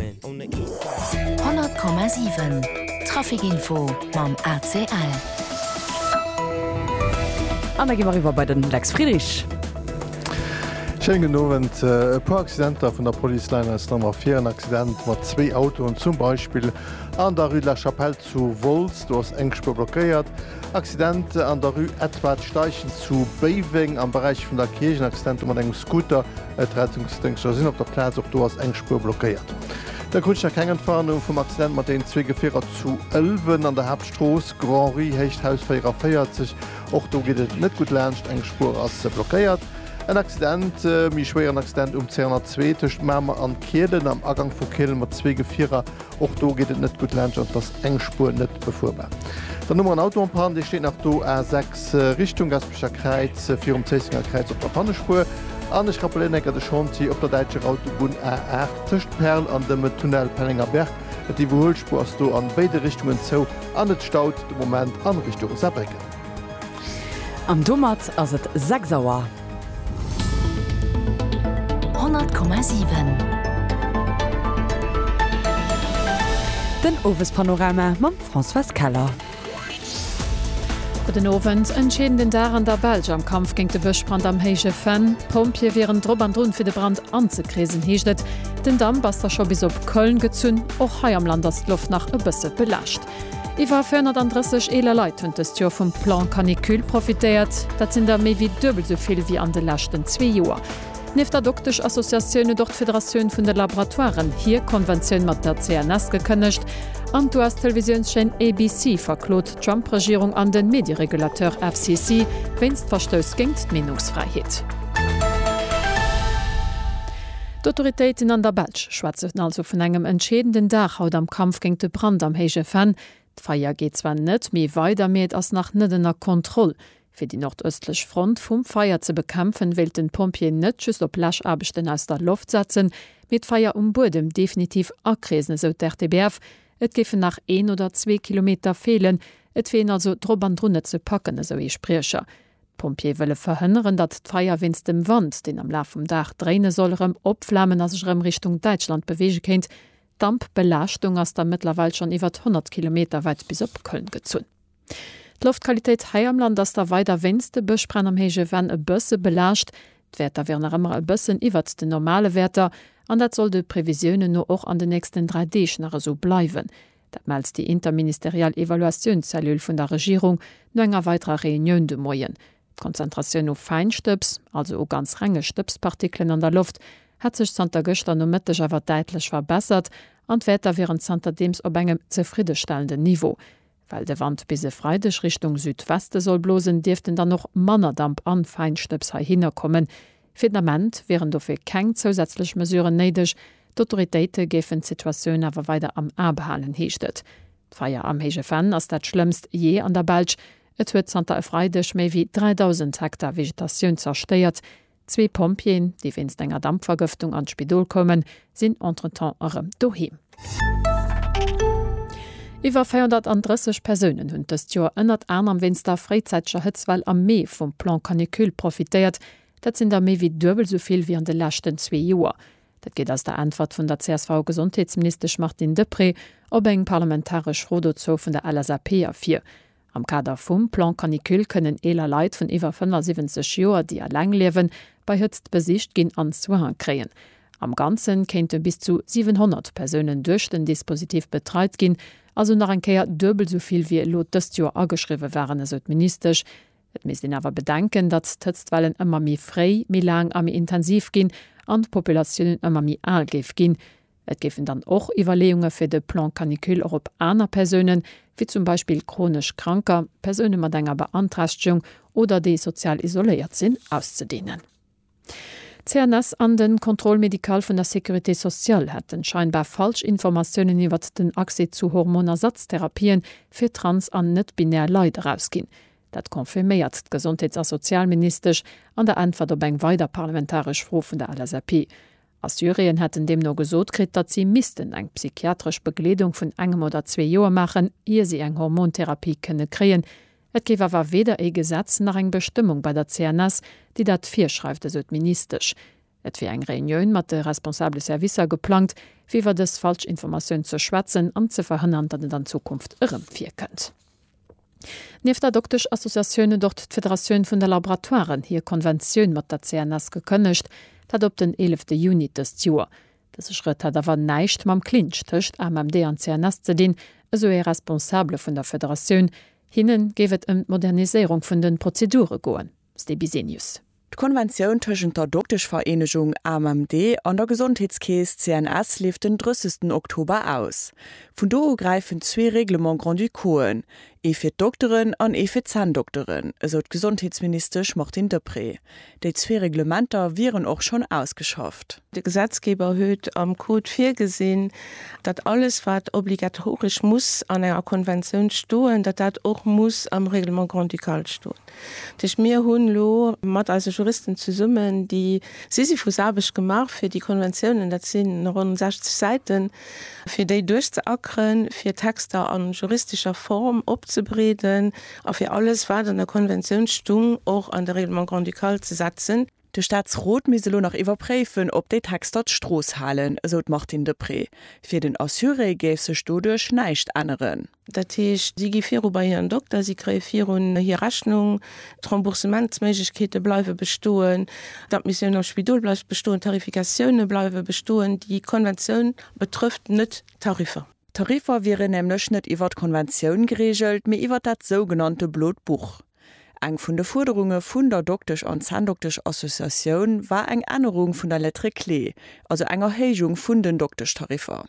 100,7 Traficinfo mam ACL. An da gi mer eriwwer bei de Lex Friedrich. Schéinen gudden Owend. E puer Accidenter vun der Police leien eis dann ervir. En Accident mat zwee Autoen zum Beispill an der Rue de la Chapelle. Zu Wolz, do ass eng Spuer blockéiert. Accident an der Rue Edward Steichen zu Béiweng am Beräich vun der Kierch, en Accident do mat engem Scooter. D'Rettungsdéngschter sinn op der Plaz, och do ass eng Spuer blockéiert. Da krut ech nach keng Entwarnung vum Accident mat deenen zwee Gefierer zu Ëlwen an der Haaptstrooss, Grand-Rue, héicht Haus 44. Och do geet et net gutt laanscht, eng Spuer ass blockéiert. En Accident, e méi schwéieren Accident um C102 tëscht Mamer an Kielen am Agank vu Kielen mat zwee Gefierer Och do geet et net gutt laanscht an et ass eng Spuer net befuerbar. Dann hu mer en Auto en panne, dee steet nach do, A6 Richtung Gaspecher Kräiz, virum Zéissenger Kräiz op der Pannespuer. An ech rappelléieren enker de Chantier op der däitscher Autobunn A8 tëscht Perl an dem Tunnel Pellengerberg. D'Iwwerhuelspuer ass do an béide Richtungen zou an et staut de Moment an Richtung Saarbrécken. An domat ass et 6 Auer. Den Owespanorama mam Françoise Keller. Gudden Owend, Entscheedenden Dag an der Belsch am Kampf géint de Bëschbrand am Héije Venn. D'Pompjeeë wieren drop an drun, fir de Brand anzekreesen, heescht et. Den Damp ass da scho bis op Köln gezunn. Och hei am Land ass d'Loft nach e bësse belaascht. Iwwer 430 eeler Leit hunn dëst Joer vum Plan Canicule profitéiert. Dat sinn der méi wéi duebel esou vill wéi an de leschten zwee Joer. Nieft der Doktesch-Associatioun huet och d'Federatioun vun de Laboratoiren hir Konventioun mat der CNS gekënnegt an d'US-Televisiounschaîne ABC verklot d'Trump-Regierung an de Medieregulateur FCC wéinst Verstouss géint d'Meenungsfräiheet. D'Autoritéiten an der Belsch schwätzen also vun engem entscheedenden Dag haut am Kampf géint de Brand am Héije Venn. D'Feier geet zwar net méi weider, mee et ass nach net ënner Kontroll. Fir déi nordëstlech Front vum Feier ze bekämpfen, wéilten d'Pompjeeën net just op Läschaarbechten aus der Loft setzen, mee d'Feier um Buedem definitiv akreesen, esou d'RTBF. Et géifen nach een oder zwee Kilometer feelen. Et wier een also drop an drun, et ze packen, esou ee Spriecher. D'Pompjeeë wëlle verhënneren, datt d'Feier wéinst dem Wand, deen am Laf vum Dag dréine soll, erëm opflamen a sech erëm Richtung Däitschland beweege kéint. D'Dampbelaaschtung ass da mëttlerweil schonn iwwert 100 Kilometer wäit bis op Köln gezunn. D'Loftqualitéit hei am Land ass da weider wéinst de Bëschbränn am héije Venn e bësse belaascht. D'Wäerter wieren nach ëmmer e bëssen iwwert den normale Wäerter an dat soll de Previsiounen no och an den nächsten dräi Deeg nach esou bleiwen, Dat mellt déi interministeriell Evaluatiounszellule vun der Regierung no enger weiderer Reunioun de Moien. D'Konzentratioun u Fäinstëbs, also u ganz renge Stëbspartikelen an der Loft, hätt sech zanter gëschter Nomëtteg awer däitlech verbessert an d'Wäerter wieren zanterdeems op engem zefriddestellenden Niveau. Well de Wand bis e Freideg Richtung Südweste soll blosen, dierften dann och manner Damp an Fäinstëbs heihinner kommen, Fir den Ament wieren dofir keng zousätzlech Mesuren néideg. D'Autoritéite géifen d'Situatioun awer weider am A behalen, heescht et. D'Feier am Héije Venn ass dat schlëmmst jee an der Belsch. Et huet zanter e Freideg méi wéi 3.000 Hektar Vegetatioun zerstéiert. Zwee Pompjeeën, déi wéinst enger Dampvergëftung an d'Spidol koumen, sinn entretemps erëm doheem. Iwwer 430 Persounen hunn dëst Joer ënnert anerem wéinst der fréizäiteger Hëtzwell am Mee vum Plan Canicule profitéiert. Dat sinn der méi wéi duebel esou vill wéi an de leschten zwee Joer. Dat geet aus der Äntwert vun der CSV-Gesondheetsministesch Martine Deprez op eng parlamentaresch Fro dozou vun der LSAP ervir. Am Kader vum Plan Canicule kënnen eeler Leit vun iwwer 75 Joer, déi eleng liewen, bei Hëtzt besicht ginn an Soin kréien. Am Ganze kéinte bis zu 700 Persounen duerch den Dispositif betreit ginn, also nach eng Kéier duebel esou vill wéi elo dëst Joer ageschriwwe waren, esou d'Ministesch. Et misst een awer bedenken, datt d'Hëtztwellen ëmmer méi fréi, méi laang a méi intensiv ginn an d'Populatiounen ëmmer méi al géif ginn. Et géifen dann och Iwwerleeunge fir de Plan canicule och op aner Persounen, wéi zum Beispill chronesch Kranker, Persoune mat enger Beanträchtegung oder déi sozial isoléiert sinn, auszedehnen. D'CNS an de Contrôle médical vun der Sécurité sociale hätten scheinbar falsch Informatiounen iwwert den Accès zu Hormonersatztherapien fir trans an net-binär Leit erausginn. Dat confirméiert d'Gesondheets a Sozialministesch an der Äntwert op eng weider parlamentaresch Fro vun der LSAP. A Syrien hätten deemno gesot kritt, datt si missten eng psychiatresch Begleedung vun engem oder zwee Joer maachen, ier si eng Hormontherapie kënne kréien. Et géif awer weder ee Gesetz nach eng Bestëmmung bei der CNS, déi dat virschreift, esou d'Ministesch. Et wier eng Reunioun mat de responsabele Servicer geplangt, fir iwwer dës Falschinformatioun ze schwätzen an ze verhënnern, datt et an Zukunft erëm virkënnt. Nieft der Doktesch-Associatioun huet och d'Federatioun vun de Laboratoiren hir Konventioun mat der CNS gekënnegt, dat op den eelefte Juni dëst Joer. Dëse Schrëtt hätt awer näischt mam Clinch tëscht AMMD an CNS ze dinn, esou ee Responsabele vun der Federatioun. Hinne géif et ëm d'Moderniséierung vun de Prozedure goen. Ste Bisenius. D'Konventioun tëschent der Dokteschvereenegung AMMD an der Gesondheetskeess CNS leeft den 30 Oktober aus. Vun do u gräifen zwee Règlements grand-ducauxen, ee fir d'Dokteren an ee fir d'Zänndokteren, esou d'Gesondheetsministesch Martine Deprez. Déi zwee Reglementer wieren och schonn ausgeschafft. De Gesetzgeber huet am Code virgesinn, datt alles wat obligatoresch muss an enger Konventioun stoen, datt dat och muss am Règlement grand-ducal stoen. Tëscht mir hunn elo mat eise Juristen zesummen déi Sisyphusaarbecht gemaach, fir déi Konventiounen, dat si ronn 60 Säiten, fir déi duerchzeackeren, fir d'Texter a juristescher Form opzebreeden a fir alles, wat an der Konventioun stung, och an de Règlement grand-ducal ze setzen. De Staatsrot misst elo nach iwwerpréifen, ob déi Texter d'Strooss halen, esou d'Martine Deprez. Fir den Assuré géif sech doduerch näischt änneren. Dat heescht, si gi viru bei hiren Dokter, si kréie virun hir Rechnung, d'Remboursementsméiglechkeete bleiwe bestoen, d'Admissioun am Spidol bleift bestoen, d'Tarifikatioune bleiwe bestoen. Déi Konventioun betrëfft net d'Tariffer. D'Tariffer wieren nämlech net iwwer d'Konventioun gereegelt, mee iwwer dat sougenannte Blot Buch. Eng vun de Fuerderunge vun der Doktesch an Zänndokteschassociatioun war eng Ännerung vun der Lettre clé, also eng Erhéijung vun den Dokteschtariffer.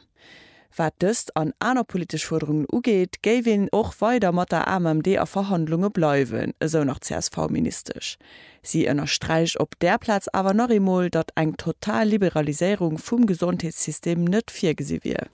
Wat dëst an aner politesch Fuerderungen ugeet, géif een och weider mat der AMMD a Verhandlunge bleiwen, esou nach d'CSV-Ministesch. Si ënnersträicht op där Plaz awer nach eemol, datt eng total Liberaliséierung vum Gesondheetssystem net virgesi wier.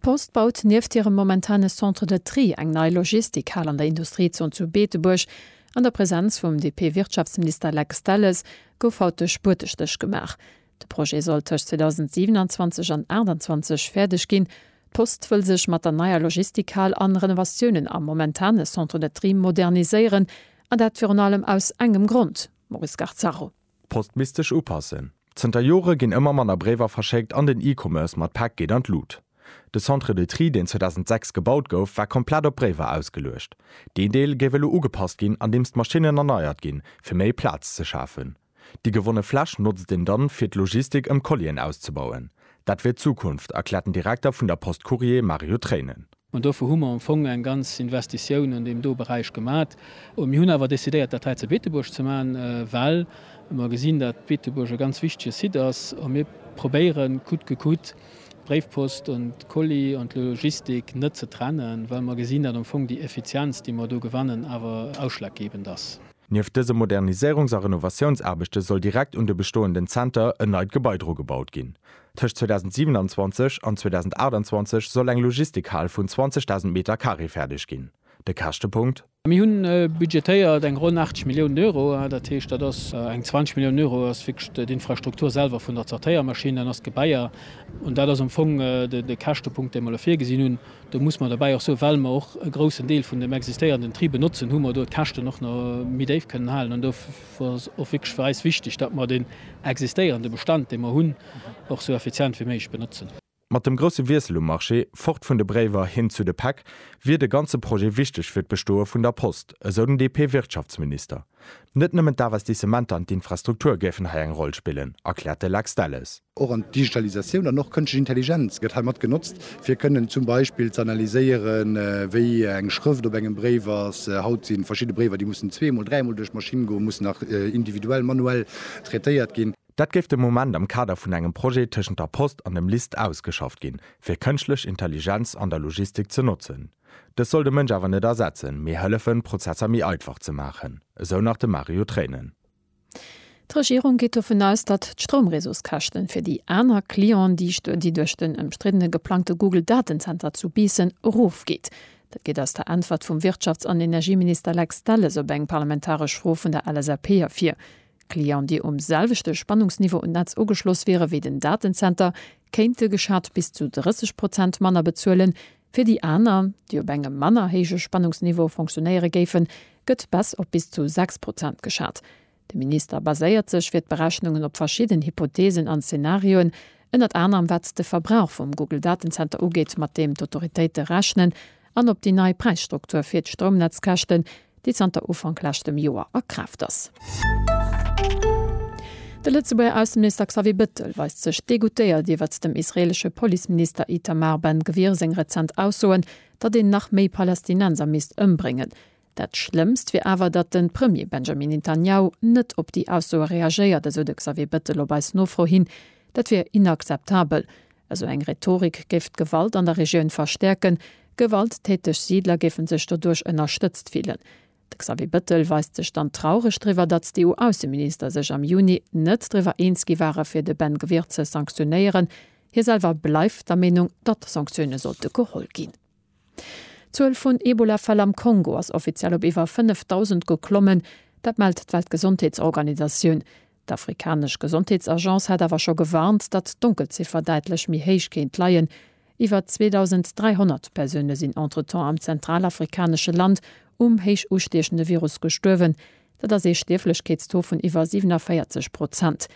D'Post baut nieft hirem momentane Centre de Tri eng nei Logistikhal an der Industriezon zu Beetebuerg. An der Presenz vum DP-Wirtschaftsminister Lex Delles gouf haut de Spuertestéch gemaach. De Projet soll tëscht 2027 an 28 fäerdeg ginn. D'Post wëll sech mat der neier Logistikhal an Renovatiounen am momentane Centre de Tri moderniséieren, an dat virun allem aus engem Grond, Maurice Garzaro. D'Post misst sech upassen. Zënter Jore ginn ëmmer manner Bréiwer verschéckt an den E-Commerce mat Päck geet an d'Lut. De Centre de Tri, deen 2006 gebaut gouf, war komplett op Bréiwer ausgeluecht. Deen Deel géif elo ugepasst ginn, andeems d'Maschinnen erneiert ginn, fir méi Plaz ze schafen. Déi gewonne Fläch notzt een dann, fir d'Logistik ëm Collien auszebauen. Dat wier d'Zukunft, erkläert den Direkter vun der Post Courrier, Mario Treinen. An dofir hu mer am Fong eng ganz Investitioun an deem do Beräich gemat. Mir hunn awer decidéiert, dat hei zu Beetebuerg ze maachen, well mer gesinn, datt Beetebuerg e ganz wichtige Site ass a mir probéieren, coûte que coûte, d'Bréifpost an d'Colis an d'Logistik net ze trennen, well mer gesinn, datt am Fong déi Effizienz, déi mer do gewannen, awer ausschlaggebend ass. Nieft dëse Moderniséierungs a Renovatiounsaarbechte soll direkt un de bestoenden Zenter en neit Gebai drugebaut ginn. Tëscht 2027 an 2028 soll eng Logistikhal vun 20.000 Meter Carré fäerdeg ginn. De Käschtepunkt? Mir hu budgetéiert eng ronn 80 Milliounen Euro. Dat heescht, dat ass eng 20 Milliounen Euro ass wierklech d'Infrastruktur selwer vun der Zertéiermaschinn, dann ass d'Gebaier. An dat ass am Fong de Käschtepunkt, dee mer elo virgesinn hunn. Do muss mer derbäi och soen, well mer och e groussen Deel vun dem existéierenden Tri benotzen, hu mer do d'Käschten och nach méi déif kënnen halen. An do ass och wierklech fir eis wichteg, datt mer deen existéierende Bestand, dee mer hunn, och esou effizient wéi méiglech benotzen. Mat dem grousse Wiessel um Marché, fort vun de Bréiwer hin zu de Päck, wier de ganze Projet wichteg fir d'Bestoe vun der Post, esou den DP-Wirtschaftsminister. Net nëmmen d'Investissementer an d'Infrastruktur géifen hei eng Roll spillen, erkläert de Lex Delles. Och an d'Digitalisatioun an och kënschtlech Intelligenz gëtt hei mat genotzt, fir kënnen zum Beispill ze analyséieren, wéi eng Schrëft op engem Bréif ass. Haut si verschidde Bréiwer, déi mussen zweemol, dräimol duerch d'Maschinn goen, mussen nach individuell, manuell traitéiert ginn. Dat géif de Moment am Kader vun engem Projet tëschent der Post an dem LIST ausgeschafft ginn, fir kënschtlech Intelligenz an der Logistik ze notzen. Dës soll de Mënsch awer net ersetzen, mee hëllefen, d'Prozesser méi einfach ze maachen, esou nach de Mario Treinen. D'Regierung geet dovun aus, datt d'Stroumreseauskäschten fir déi aner Clientsdichte, déi duerch den ëmstriddene geplangte Google-Datenzenter zu Biissen erofgeet. Dat geet aus der Äntwert vum Wirtschafts an Energieminister Lex Delles op eng parlamentaresch Fro vun der LSAP ervir. Clienten, déi um selwechte Spannungsniveau un d'Netz ugeschloss wiere wéi den Datenzenter, kéinte geschat bis zu 30 Prozent manner bezuelen, Fir déi aner, déi op engem manner héije Spannungsniveau fonctionéiere géifen, gëtt Baisse op bis zu 6 Prozent geschat. De Minister baséiert sech fir d'Berechnungen op verschidden Hypotheesen an Zenarioen, ënnert anerem wat de Verbrauch vum Google-Datenzenter ugeet, mat deem d'Autoritéite rechnen, an op déi nei Präisstruktur fir d'Stroumnetzkäschten, déi zanter Ufank leschtem Joer a Kraaft ass. De Lëtzebuerger Ausseminister Xavier Bettel weist sech degoutéiert iwwert dem israeelesche Policeminister Itamar Ben Gvir seng rezent Aussoen, datt een nach méi Palästinenser misst ëmbréngen. Dat Schlëmmst wier awer, datt de Premier Benjamin Netanjahu net op déi Aussoe reagéiert, esou de Xavier Bettel op eis Nofro hin. Dat wier inakzeptabel, Esou eng Rhetorik géif d'Gewalt an der Regioun verstäerken, gewalttäteg Siidler géife sech doduerch ënnerstëtzt fillen. De Xavier Bettel weist sech dann traureg driwwer, datt d'EU-Ausseminister sech am Juni net driwwer eens gi ware fir de Ben Gvir ze sanktionéieren. Hie selwer bleift der Meenung, datt Sanktioune sollte geholl ginn. D'Zuel vun Ebola-Fäll am Kongo ass offiziell op iwwer 5.000 geklommen. Dat mellt d'Weltgesondheetsorganisatioun. D'afrikanesch Gesondheetsagence hat awer scho gewarnt, datt d'Donkelziffer däitlech méi héich kéint leien. Iwwer 2.300 Persoune sinn entretemps am zentralafrikanesche Land um héich ustiechende Virus gestuerwen. Dat ass ee Stierflechkeetstaux vun iwwer 47 Prozent.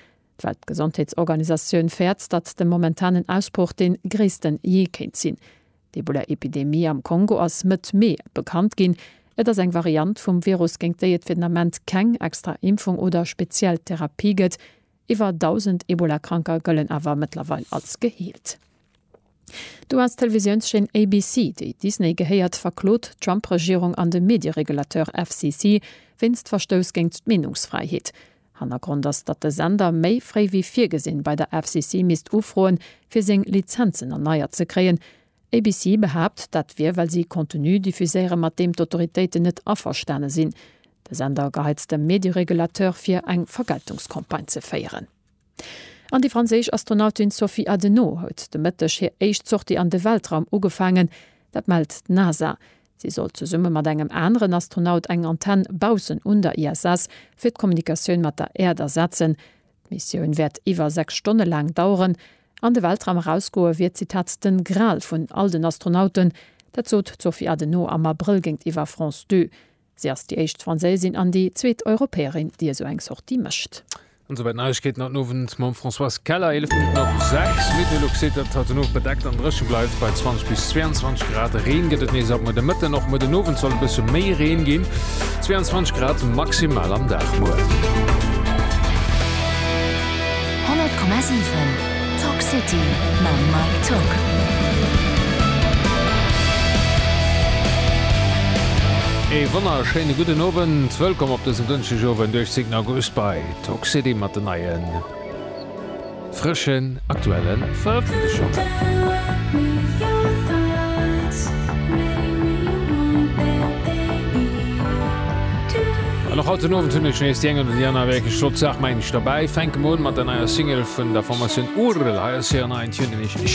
D'Weltgesondheetsorganisatioun fäert, datt de momentanen Ausbroch dee gréissten jee kéint sinn. D'Ebola-Epidemie am Kongo ass Mëtt Mee bekannt ginn. Et ass eng Variant vum Virus, géint déi et fir den Ament keng extra Impfung oder speziell Therapie gëtt. Iwwer 1.000 Ebola-Kranker gëllen awer mëttlerweil als geheelt. D'US-Televisiounschaîne ABC, déi Disney gehéiert, verklot d'Trump-Regierung an de Medieregulateur FCC wéinst Verstouss géint d'Meenungsfräiheet. Hannergrond ass, datt de Sender méi fréi wéi virgesinn bei der FCC misst ufroen, fir seng Lizenzen erneiert ze kréien. ABC behaapt, dat wier, well si Contenu diffuséiere mat deem d'Autoritéiten net averstane sinn. De Sender geheizt dem Medieregulateur vir, eng Vergeltungscampagne ze féieren. An déi franséisch Astronautin Sophie Adenau huet de Mëtteg hir éischt Sortie an de Weltraum ugefaangen. Dat mellt d'NASA. Si sollt zesumme mat engem aneren Astronaut eng Antenn baussen un der ISS fir d'Kommunikatioun mat der Äerd ersetzen. D'Missioun wäert iwwer 6 Stonne laang daueren. An de Weltraum erausgoe wier, Zitat, den Gral vun all den Astronauten. Dat sot d'Sophie Adenau am Abrëll géintiwwer France Deux. Si ass déi éischt Franséisin an déi zweet Europäerin, déi esou eng Sortie mécht. An souwäit d'Neiegkeeten an den Owend mam Françoise Keller. 11 Minutten op 6. Meteolux seet, datt et haut den Owend bedeckt an dréche bleift bei 20 bis 22 Grad. Reen gëtt et nees ab muer de Mëtten. Och muer den Owend soll e bësse méi Reen ginn. 22 Grad maximal am Dag muer. 100,7. Talk City mam Mike Tock. Ee wonnerschéine gudden Owend, wëllkomm op dësem Dënschdegowend 18 August bei Talk City mat den neien frëschen aktuelle Verëffentlechungen. An och haut den Owend hunn ech nees déi eng oder déi aner wierklech flott Saach, mengen ech. Dobäi fänke mer un mat der neier Single vun der Formatioun Url. Hei ass hiren neien Tune nämlech.